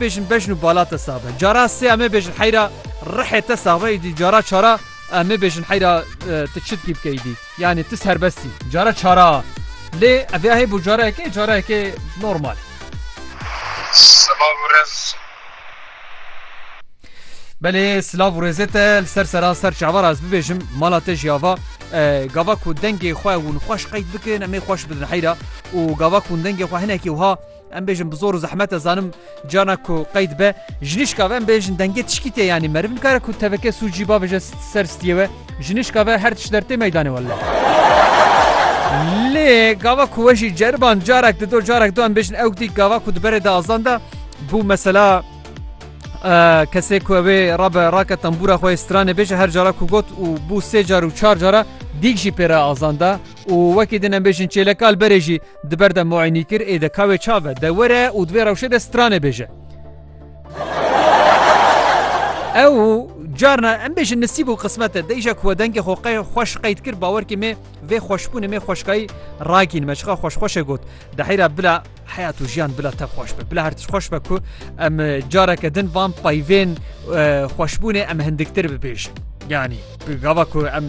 Bêjin bejn û bala te sax be. Cara sê em ê bêjin heyra rihê te sax be îdî cara çara em ê bêjin heyra tu çi dikî bike îdî. Yanî tu serbest î. Cara çara lê ev ya hêbo carayekê carayekê normal. Silav û rêz. Belê silav û rêzê te li ser seran ser çavar ez bibêjim mala te jî ava gava ku dengê xwe hûn xweş qeyd bikin em ê xweş bidin heyra û gava ku hûn dengê xwe hinekî wiha Em bêjin bi zor û zehmet ez zanim cana ku qeyd be jinişka ve em bêjin dengê tişkî tê yanî meriv nikare ku teveke sû cî bavêje ser stiyê we jinişka ve her tişt dertê meydanê welle. Lê gava ku we jî ceriban carek di do carek do em bêjin ew dî gava ku di berê de azan de bû mesela kesê ku evê rabe rake tembûra xwe stranê bêje her cara ku got û bû sê car û çar cara dîk jî pêra azan da û wekî din em bêjin çêlekal berê jî Di ber de muaynî kir ê de kawê çav e, de were û di vê rewşê de stranê bêje. Ew carna em bêjin nisîb û qismet e deyja ku we dengê xwe qey xweş qeyd kir bawerkê mê vê xweşbûnê mê xweşkayî rakîn me çixa xweş xweşê got di heyra bila heyat û jiyan bila te xweş be bila her tişt xweş be ku em e, careke din van payvên e, xweşbûnê em hindiktir bibêjin yanî gava ku em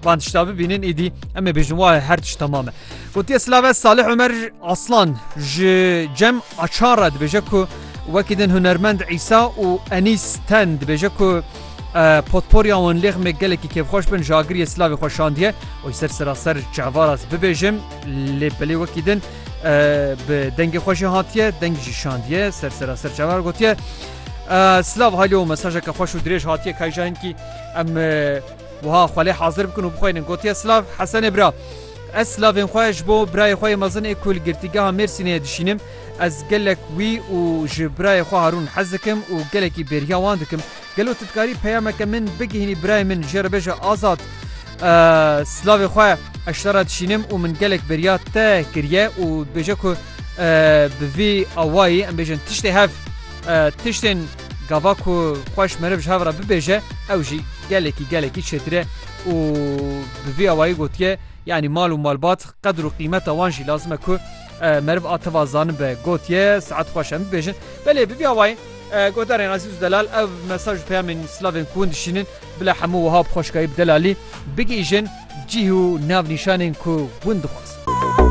van tişta bibînin êdî em ê bêjin wa her tişt tamam e Gotiye Silave Salih Omer Aslan ji Cem Açar re dibêje ku wekî din hunermend Îsa û Enîs Ten dibêje ku potporya wan lêxmê gelekî kêfxweş bin ji agiriyê Silavê xwe şandiye û ser seraser çevaras bibêjim lê belê wekî din bi dengê xwe jî hatiye deng jî şandiye ser seraser çevar gotiye Silav halî û mesajeke xweş û dirêj hatiye kayjahinkî em wiha xwelê hazir bikin û bixweynin gotiye Silav Hesenê bira. Ez silavên xwe ji bo birayê xwe yê mezin ê ku li Girtîgeha Mêrsînê dişînim. Ez gelek wî û ji birayê xwe Harûn hez dikim û gelekî bêriya wan dikim. Gelo tu dikarî peyameke min bigihînî birayê min jê re bêje Azad silavê xwe ez ji te re dişînim û min gelek bêriya te kiriye û dibêje ku bi vî awayî em bêjin tiştê hev tiştên Gava ku xweş meriv ji hev re bibêje ew jî gelekî gelekî çêtir e û bi vî awayî gotiye yanî mal û malbat qedir û qîmeta wan jî lazim e ku meriv a tiva zanin be gotiye saet xweş em bibêjin belê bi vî awayî Godarên Azîz û Delal ev mesaj û peyamên silavên ku hûn dişînin bila hemû wiha bi xweşkayî bi delalî bigihîjin cîh û navnîşanên ku hûn dixwazin.